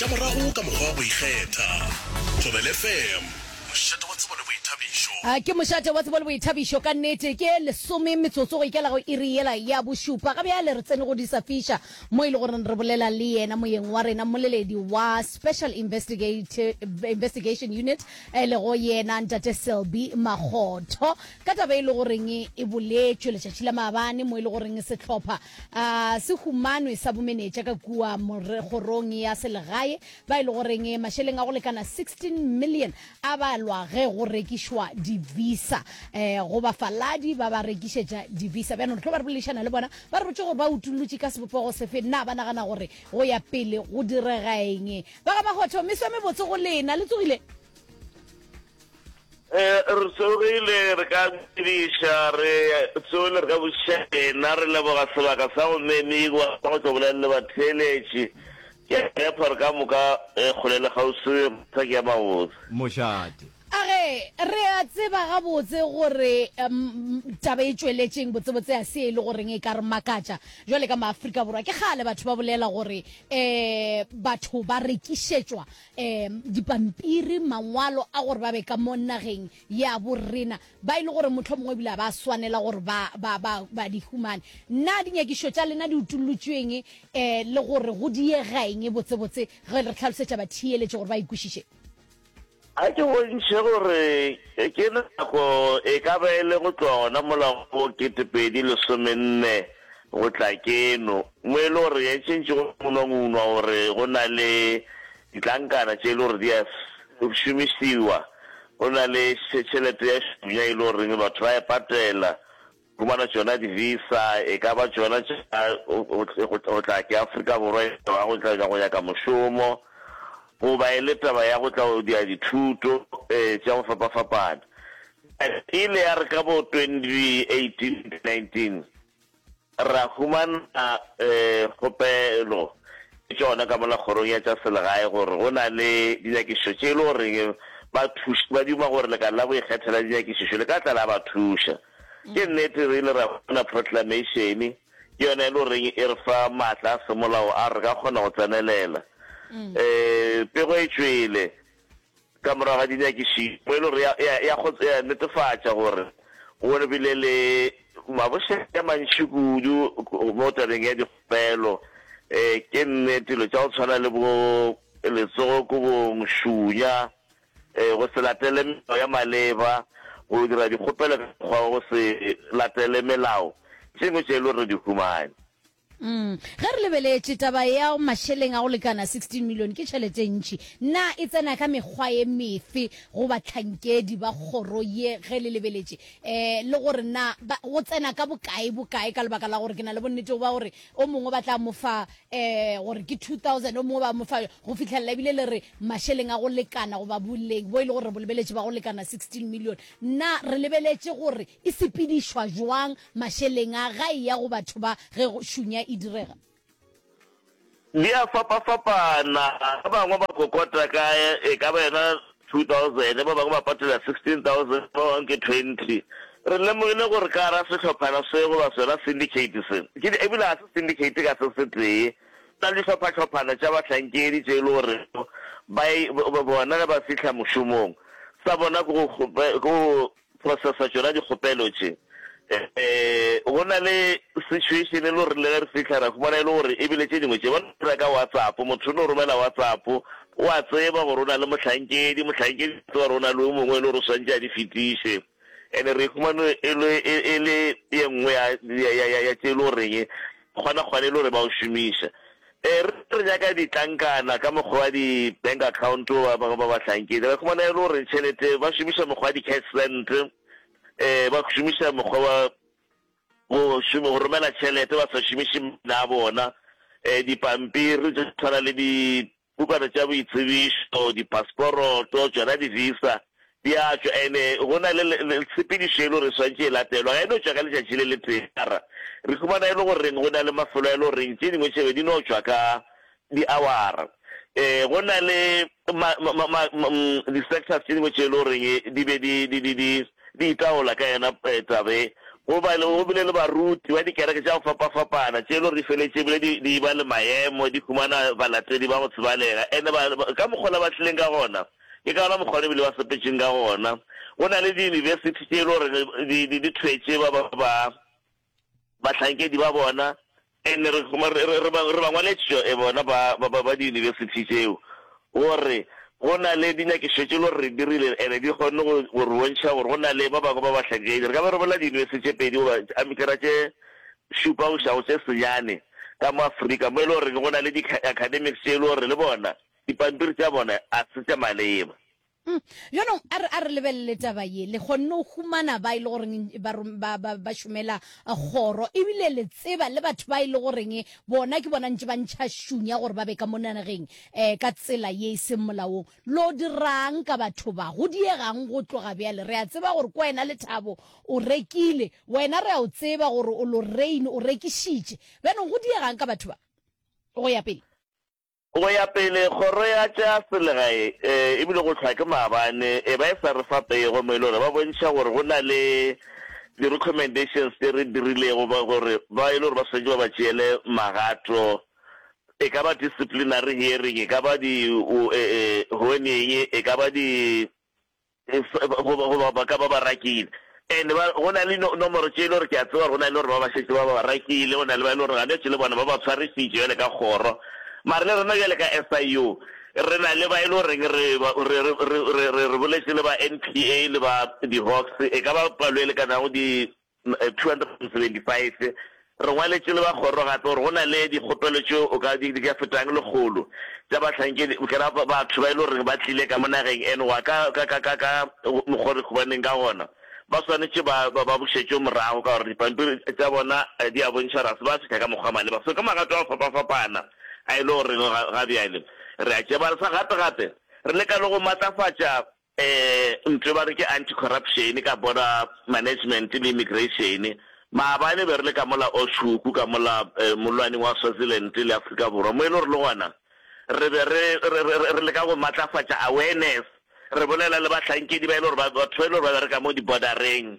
Tša morago ka mokgwa wa go ikgetha. Thobel FM, mošate wa tsebo le boithabišo. A ke mošate wa tsebo le boithabišo ka nnete? Ke lesome metsotso go ikela go iri yela ya bošupa. Ga bjale re tsene go Disa Fisher mo e le goreng re bolela le yena moyeng wa rena, mmoleledi wa Special Investigation Unit e lego yena Ntate Selby Makgotho ka taba e le goreng e boletšwe letšatši la maabane mo e le goreng sehlopha A se humanwe sa bomenetša ka kua kgorong ya selegae ba e le goreng mašeleng a go lekana 16 million a balwa ge go rekišwa divisa um go bafaladi ba ba rekišetša divisa. Bjana re tlo ba re boledišana le bona ba re botše gore ba utollotše ka sebopego sefe, na ba nagana gore go ya pele go diregaeng. Ba ga Mahotho, meso e mebotse go lena, le tsogile? Eh, re tsogile re ka bediša re tsogile re ka botšiša ena re leboga sebaka sa go memigwa sa go tlo bolelele batheeletši ke a tshepa re ka moka eh, kgole le kgauswi re sa ke ya mabotse Mošate. A re, Re a tseba gabotse gore um, taba e tšweletšeng botsebotse ga se e le goreng e ka re makatša. Jwale ka maAfrika Borwa ke kgale batho ba bolela gore um batho ba rekišetšwa um dipampiri mangwalo a gore ba be ka mo nageng ya borena ba e le gore motlho mongwe ebile ba swanela gore ba, ba, ba, ba di humane nna dinyakišo tša lena di utollotšweng um eh, le gore go diegaeng botsebotse ge re tlhalosetša batheeletše gore ba ikwešiše a ke bontšhe gore ke nako e ka ba e le go tloga gona molago bo ketepedi lesomenne Go tla keno, mo e le gore re entšentše go ngunwangunwa gore go na le ditlankana tše e le gore di a šomišiwa, go na le tšhelete ya šunya e le goreng batho ba e patela, fumana tšona di-visa, e ka ba tšona tša go tla ke Afrika Borwa e ba go tla go nyaka mošomo, goba e le taba ya go tla go dia dithuto tša go fapafapana. E ile ya re ka bo 2018, 2019, Ra humana kgopelo ke tšona ka mola Kgorong ya tša Selegae gore go na le dinyakišišo tše e le gore bathuši ba duma gore lekala la go ikgethela dinyakišišo le ka tla la ba thuša. Ke nnete re ile ra bona Proclamation-e ke yona e le gore e re fa maatla a semolao a re ka kgona go tsenelela. Pego e tšwele Ka morago ga dinyakišišo, poelo re ya go netefatša gore go bile le mabošego a mantši kudu mo tabeng ya dikgopelo. Ke nnete, dilo tša go tshwana le bo letsogo kobong, šunya, go se latele melao ya maleba, go dira dikgopelo ka mokgwa wa go se latele melao, tše dingwe tše e le gore re di humane. Mm. Ge re lebeletše taba ya mašeleng a go lekana 16 milione ke tšhelete e ntši, na e tsena ka mekgwa e mefe go bahlankedi ba kgoro ye ge le lebeletše um le gore na ba, go tsena ka bokae bokae ka lebaka la gore ke na le bonnetego ba gore o mongwe ba tla mo fa um gore ke 2000 o mongwe ba mo fa go fitlhelela ebile le re mašeleng a go lekana goba boleng bo e le gore re bo lebeletše ba go lekana 16 milione na re lebeletše gore E sepedišwa bjang mašeleng a gae ya go batho ba ge go šunya e direga? Di a fapafapana. Ba bangwe ba kokota ka e ka ba yona 2000, ba bangwe ba patela 16000, ba bangwe ke 20. Re lemogile gore ka gare ga sehlophana se goba sona syndicate se, ke di, ebile ga se syndicate ka se setee, go na le dihlophahlhophana tša bahlankedi tše e le gore ba bona ge ba fihla mošomong, sa bona ke go, ke go processa tšona dikgopelo tše. Um go na le situation e le gore le ge re fihla ra fumana e le gore e bile tše dingwe tše ba no dira ka WhatsApp, motho o no romela WhatsApp, o a tseba gore o na le mohlankedi, mohlankedi o tseba gore o na le o mongwe e le gore o swantše a di fetiše. And-e re e fumane e le e le ye nngwe ya ya ya ya tše e le goreng kgona kgona e le gore ba o šomiša. Ee, re re nyaka ditlankana ka mokgwa wa di-bank account ba bangwe ba bahlankedi. Re khumana e le gore tšhelete ba šomiša mokgwa wa di-cash send, um ba šomiša mokgwa wa go šome go romela tšhelete ba sa šomiše maina a bona, um dipampiri tše tshwana le dibukana tša boitsebišo, diphasporoto, tšona di-visa. Di a tšwa, and-e go na le, le, le tshepedišo e le gore e swanetše e latelwa. Ga e no tšwa ka letšatši le letee. Mara re humana e le goreng go na le mafelo a e le goreng tše dingwe tše be di no tšwa ka di-hour-ra. Um go na le ma, ma, ma, ma, ma, um, di-sectors tše dingwe tše e le goreng di be di, di, di, di, di itaola ka yona um taba e. Go ba le, go bile le baruti ba dikereke tša go fapafapana tše e le gore di feletše e bile di, di e-ba le maemo, di humana balatedi ba go tsebalega. And-e ba, ba, ka mokgwa la ba tlileng ka gona, Ke ka wona mokgwa wo re bile ba sepetšeng ka gona. Go na le diyunibesithi tše e le gore di, di, di thwetše ba, ba, ba bahlankedi ba bona, and re, re, re, re, ba, re ba ngwaletšo e bona ba, ba, ba, ba diyunibesithi tšeo, gore go na le dinyakišo tše e le gore re dirile, and di kgonne go, go re bontšha gore go na le ba bangwe ba bahlankedi. Re ka be re bolela diyunibesithi tše pedi goba a mekera tše šupa go iša go tše senyane ka mo Afrika, mo e le goreng go na le di-ca, academics tše e le gore le bona Dipampiri tša bona a se tša maleba. Uhm. Bjanong a re, a re lebelele taba ye. Le kgonne go humana ba e le goreng ba, ba, ba, ba šomela Kgoro, ebile le tseba le batho ba e le goreng bona ke bona ntše ba ntšha šung ya gore ba be ka mo nageng eh, ka tsela ye e seng molaong. Lo dira'ng ka batho ba? Go diega'ng go tloga bjale? Re a tseba gore ke wena Lethabo o rekile. Wena re a o tseba gore o Lorraine o rekišitše. Bjanong go diega'ng ka batho ba? Go ya pele. Go ya pele, kgoro ya tša selegae e e bile go hlwa ke maabane e ba e sa re fa pay gomme e le gore ba bontšha gore go na le di-recommendations tše re dirilego ba gore ba e le gore ba swanetše ba ba tšeele magato e ka ba disciplinary hearing, e ka ba di, ho, e, e, ho eng, e ka ba di, Goba, goba ba ka ba ba rakile. And ba, go na le no, nomoro tše e le gore ke a tseba gore go na le gore ba ba šetše ba ba ba rakile, go na le ba e le gore ganetše le bona ba ba tshwarisitše bjale ka kgoro. Mara le rena bjale ka SIU re na le ba e le goreng re, re, re, re, re, re boletše le ba NPA le ba di-Hawks, e ka ba palo e lekanago di, 275, Re ngwaletše le ba kgoro gape gore go na le dikgopelo tše o ka di ka fetang lekgolo tša bahlankedi kena batho ba e le goreng ba tlile ka mo nageng eno go ya ka ka ka ka ka mokgwa o re khubaneng ka gona ba swanetše ba ba ba bušetšwe morago ka gore dipampiri tša bona di a bontšha gore ga se ba fihla ka mokgwa maleba so ka magato a go fapafapana a e le goreng ga ga bjale re a tšebalesa gape gape re leka le go matlafatša Ee, ntlo ba re ke anti-corruption ka border management le immigration. Maabane be re le ka mola Oshukwu ka mola molwaneng wa Swaziland le Afrika Borwa mo e le gore le gona re be re re leka go matlafatša awareness re bolela le bahlankedi ba e le gore batho ba e le gore ba bereka mo di-border-reng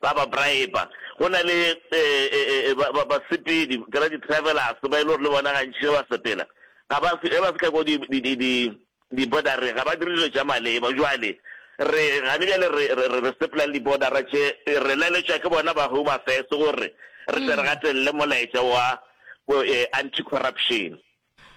ba ba briber. Go na le basepedi ke ra di travelers ba e le gore le bona gantši ge ba sepela ga ba ge ba fihla ko di di di di di bordereng ga ba dire dilo tša maleba. Jwale re gane bjale re re re sepela le di-border tše re laletšwa ke bona ba Home Affairs gore re tle re gatelele molaetša wa anti corruption.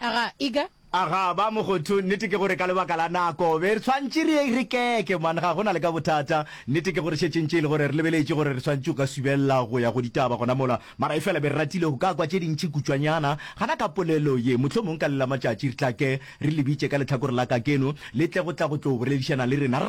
A ga, e ka. A ga, ba mogotho, nnete ke gore ka lebaka la nako, be re tshwantše re, re keke, man, ga go na le ka bothata. Nnete ke gore šetše ntše e le gore re lebeletše gore re swanetše go ka subelela go ya go ditaba gona mola, mara efela be re ratile go ka kwa tše dintši kutšwanyana gana ka polelo ye. Mohlomong ka le la matšatši re tla ke re le bitše ka lehlakore la kakeno, le tle go tla go tlo boledišana le rena. Re.